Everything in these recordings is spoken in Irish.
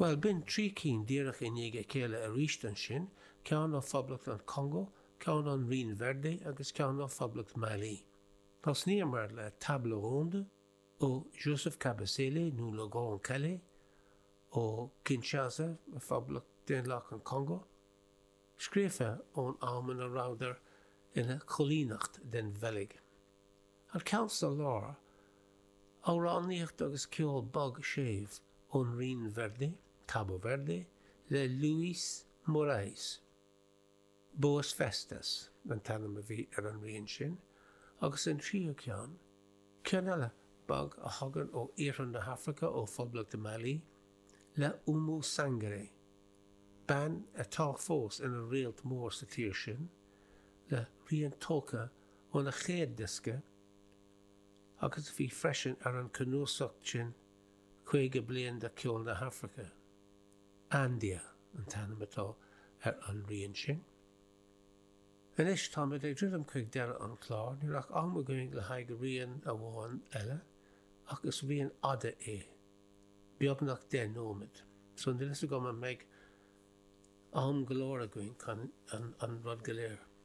Bhuel, b'in trí cinn díreach i ndiaidh a chéile aríst ansin, ceann ó Phoblacht an Chongó, ceann ón Rinn Verde agus ceann ó Phoblacht Mhailí. Thosnaíomar le Table Ronde ó Joseph Kabasele nó Le Grand Kallé ó Kinshasa, i bPoblacht Daonlathach an Chongó, scríofa ón am ina rabhadar ina coilíneacht den Bheilg. An ceann sa lár, amhránaíocht agus ceol bog séimh ón Rinn Verde, Cabo Verde, le Luis Morais. Boas Festas an t-ainm a bhí ar an rian sin, agus an tríú ceann, ceann eile bog a thagann ó iarthar na hAfraice, ó Phoblacht Mali, le Oumou Sangaré, bean atá fós ina réalt mór sa tír sin, le rian tógtha óna chéad diosca, agus a bhí freisin ar an cnuasacht sin caoga bliain de cheol na hAfraice. Andia an t-ainm atá ar an rian sin. Anois táimid ag druidim chuig deireadh an chláir, níl ach am againn le haghaidh rian amháin eile, ach is rian fhada é, beagnach deich nóiméad, so níl fhios agam an mbeidh am go leor againn chun an rud go léir.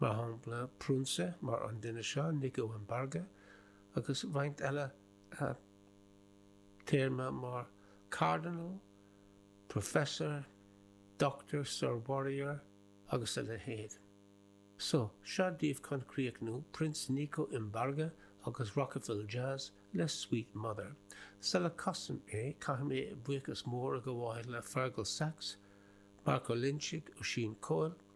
mar shampla prionsa mar an duine seo, Nico Mbarga, agus roinnt eile téarma mar Cardinal, Professor, Doctor, Sir, Warrior agus a leithéid. So, seo daoibh chun críochnú, Prince Nico Mbarga agus Rocafil Jazz le Sweet Mother. Sula gcasaim é, caithfidh mé buíochas mór a ghabháil le Fergal Sachs, Marc Ó Loingsigh, Oisín Coyle,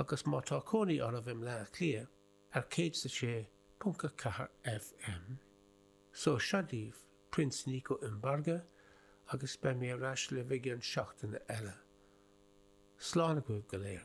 agus má tá cónaí oraibh i mBleá Cliath ar 106.4 FM, so seo daoibh Prince Nico Mbarga agus beidh mé ar ais libh i gcionn seachtaine eile. Slán agaibh go léir.